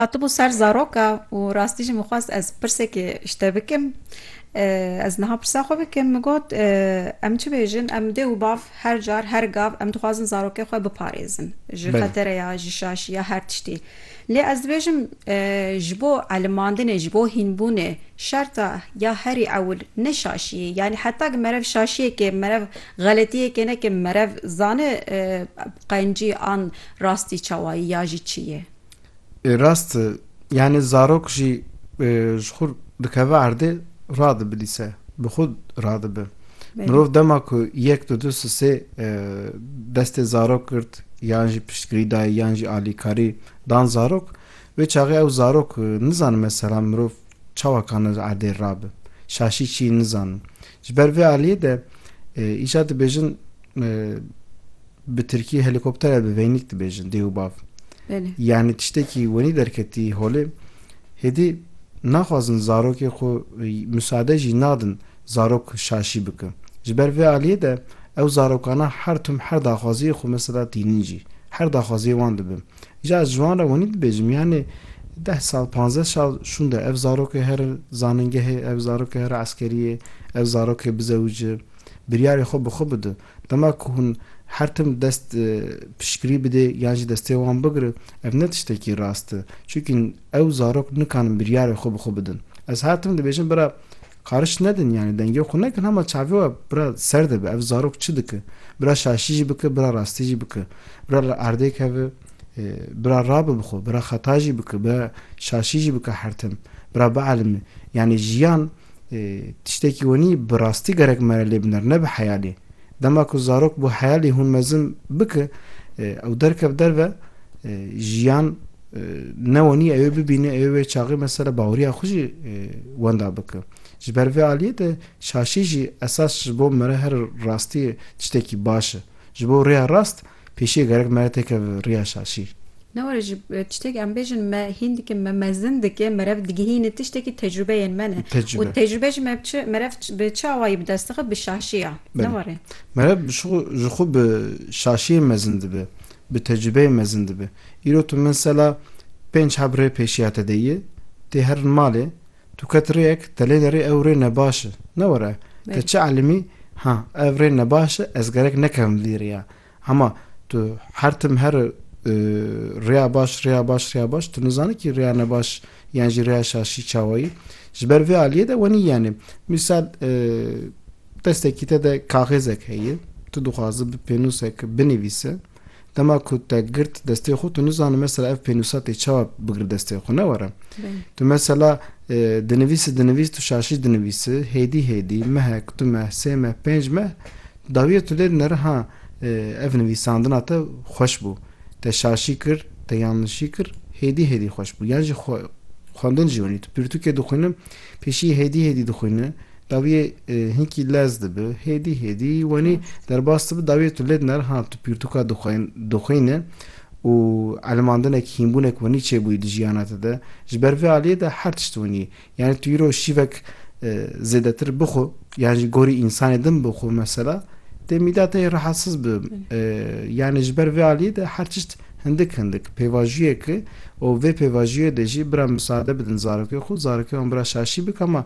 Hatibû ser zaroka û rastî jî min xwest ez pirsekê ji te bikim. Ez niha pirsa xwe bikim, min got, Em çi bêjin, em dê û bav her car, her gav em dixwazin zarokê xwe biparêzin ji xetere ya, ji şaşî ya her tiştî. Lê ez dibêjim ji bo elimandinê, ji bo hînbûnê şerta ya herî ewil ne şaşiyê, yanî heta ku merev şaşiyekê, merev xeletiyekê neke, merev zane qencî an rastî çawa yê ya jî çi yê. Rast e, yanî zarok jî ji xwe dikeve erdê radibilîse, bi xwe radibe. Mirov dema ku yek di du sisê destê zarok girt yan jî piştgirî dayê yan jî alîkarî dan zarok, wê çaxê ew zarok nizanin mesela mirov çawa kane ji erdê rabe, şaşî çî nizanin. Ji ber vê aliyê de îcar dibêjin, Bi tirkî helîkoptere bi veynîk dibêjin dê û bav. Belê. Yanî tiştekî wenî derketî holê. Hêdî naxwazin zarokê xwe musade jî nadin zarok şaşî bike. Ji ber vê aliyê de ew zarokana her tim her daxwaziyê xwe mesela tînin jî her daxwaziyê wan dibe. Îja ez ji wan re wenî dibêjim yanî deh sal panzdeh sal şûnde ev zarokê here zanîngehê, ev zarokê here eskeriyê, ev zarokê bizewice biryarê xwe bi xwe bide. Dema ku hûn her tim dest piştgirî bidê yan jî destê wan bigire ev ne tiştekî rast e. Çimkî ew zarok nikarin biryarê xwe bi xwe bidin. Ez her tim dibêjim bira qariş nedin yanî dengê xwe nekin hema çavê we bira ser de be ev zarok çi dike. Bira şaşî jî bike bira rastî jî bike. Bira li erdê keve bira rabe bi xwe bira xeta jî bike bira şaşî jî bike her tim bira bielimê yanî jiyan Tiştekî wenî bi rastî gerek mere lê biner ne bi heyalî. Dema ku zarok bû heyalî hûn mezin bike ew derket derve jiyan ne wenî ewê bibîne ewê wê çaxê mesela baweriya xwe jî wenda bike. Ji ber vê aliyê de şaşî jî esas ji bo mere her rastî tiştekî baş e. Ji bo rêya rast Pêşî gerek mere têke riya şaşî. Ne were ji tiştek em bêjin me hîn dike, me mezin dike, merev digihîne tiştekî tecrûbeyên me ne. Û tecrûbe jî me bi merev bi çi awayî bi dest dixe bi şaşî ya. Ne were. Merev bi şixwe ji xwe bi şaşiyê mezin dibe, bi tecrûbeyê mezin dibe. Îro tu min sela pênc heb rê pêşiya te de yî, tê herin malê, Tu ket rêyek te lê derê ew rê nebaş e. Ne were. Te çi elîmî? Ha, ev rê nebaş e, ez gerek nekevim vî rêya. Hema tu her tim here rêya baş, rêya baş, rêya baş, tu nizanî kî rêya nebaş yan jî rêya şaşî çawa yî. Ji ber vê aliyê de wenî yanê. Mîsal destekî te de kaxêzek heye, tu dixwaze bi pênûsek binivîse. Dema ku te girt destê xwe tu nizanim mesela ev pênûsa tê çawa bigir destê xwe ne were. Tu mesela dinivîsi dinivîs tu şaşî dinivîsi hêdî hêdî mehek tu meh sê meh pênc meh dawiye tu lê dinere ha ev nivîsandina te xweş bû te şaşî kir te yanlişî kir hêdî hêdî xweş bû yan jî xwendin jî winî tu pirtûkê dixwînim pêşî hêdî hêdî dixwîni Dawiyê hinkî lez dibi, hêdî hêdî wenî derbas dibi, dawiyê tu lê diner, ha tu pîrtûka dixwîne û elimandinekî, hînbûnek wenî çêbûyî di jiyana te de, ji ber vê aliyê de her tişt wenî ye. Yanî tu îro şîvek zêdetir bixwe yan ji gorî însanê din bixwe mesela dê mîda te yê rehetsiz bi. Yanî ji ber vê aliyê de her tişt hindik hindik pêvajiyek e û vê pêvajiyê de jî bira misade bidin zarokê xwe, zarokê wan bira şaşî bik ama